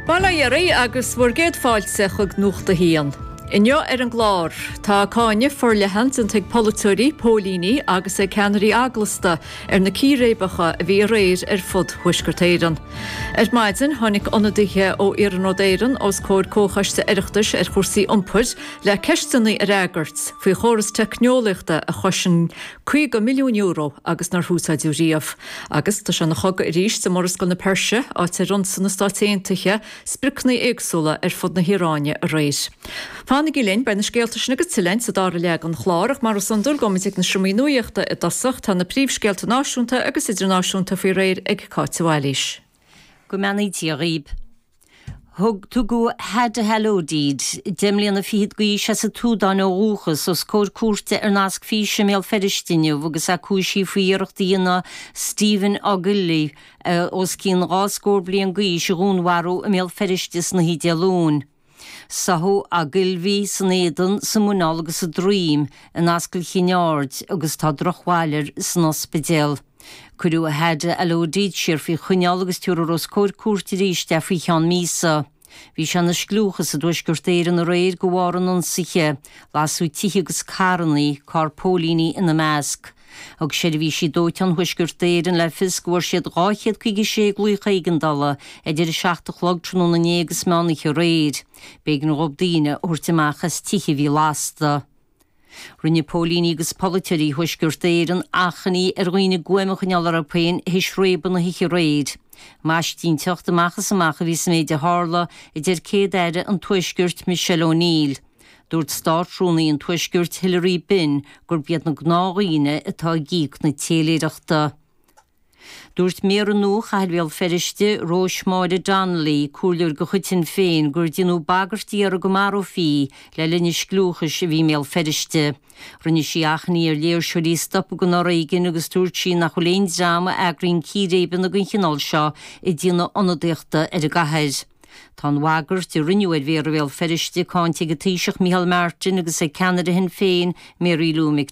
Bail ó Dhia oraibh agus bhur gcéad fáilte chuig Nuacht a hAon. Inniu ar an gclár, tá cáineadh forleathan déanta ag polaiteoirí, póilíní agus ag ceannairí eaglasta ar na círéibeacha a bhí aréir ar fud Thuaisceart Éireann. Ar maidin, tháinig ionadaithe ó Iarnród Éireann os comhair Comhchoiste Oireachtais ar Chúrsaí Iompair le ceisteanna a fhreagairt faoi chóras teicneolaíochta a chosain €50 milliún agus nár húsáideadh riamh. Agus tá sé ina chogadh arís i Murascaill na Peirse, áit ar ionsaigh na Stáit Aontaithe spriocnaí éagsúla ar fud na hIaráine aréir. Fanaigí linn, beidh na scéalta sin agus tuilleadh sa dara leath den chlár ach mar is iondúil gabhfaimid ag na seomraí nuaíochta i dtosach, tá na príomhscéalta náisiúnta agus idirnáisiúnta faoi réir ag Cáit de Bhailís. Go mbeannaí Dia dhaoibh. Tugadh Hadi Alodid, deich mbliana fichead d'aois, as an tSúdáin ó dhúchas, os comhair cúirte ar nasc físe i mBéal Feirste inniu agus é cúisithe faoi iarracht a dhéanamh Stephen Ogilvie, os cionn dhá scór bliain d'aois, a dhúnmharú i mBéal Feirste san oíche Dé Luain. Sáthadh Ogilvie san éadan, sa mhuineál agus sa droim, in Ascaill Chinn Aird agus tá drochbhail air san ospidéal. Cuireadh Hadi Alodid siar faoi choinneál agus tabharfar os comhair cúirt arís é faoi cheann míosa. Bhí sé ina scliúchas i dTuaisceart Éireann aréir de bharr an ionsaithe. Lasadh tithe agus carrannaí, carr póilíní ina measc. Thug seirbhísí dóiteáin Thuaisceart Éireann le fios go bhfuair siad 256 glaoch éigeandála idir 7 a chlog tráthnóna inné agus meán oíche aréir. B'éigean dhóibh daoine a thabhairt amach as tithe a bhí lasta. Rinne póilíní agus polaiteoirí Thuaisceart Éireann achainí ar dhaoine guaim a choinneáil orthu féin théis réabadh na hoíche aréir. Maistínteacht amach is amach a bhí sa méid a tharla, a deir Céad-Aire an Tuaiscirt, Michelle O'Neill. Dúirt Státrúnaí an Tuaiscirt, Hilary Benn, gurb iad na gnáthdhaoine atá ag íoc na téiléireachta. Dúirt Méara nua Chathair Bhéal Feirste, Róis-Máire Donnelly, comhairleoir de chuid Shinn Féin, gur déanadh bagairtí uirthi go marófaí í le linn an scliúchais a bhí i mBéal Feirste. Rinne sí achainí ar léirseoirí stopadh den fhoréigean agus dúirt sí nach bhfuil aon dream a eagraíonn círéibeanna den chineál seo ag déanamh ionadaíochta ar an gcathair. Tá an bhagairt a rinneadh ar Mhéara Bhéal Feirste cáinte ag an Taoiseach Micheál Martin agus ag ceannaire Shinn Féin, Mary Lou Mc.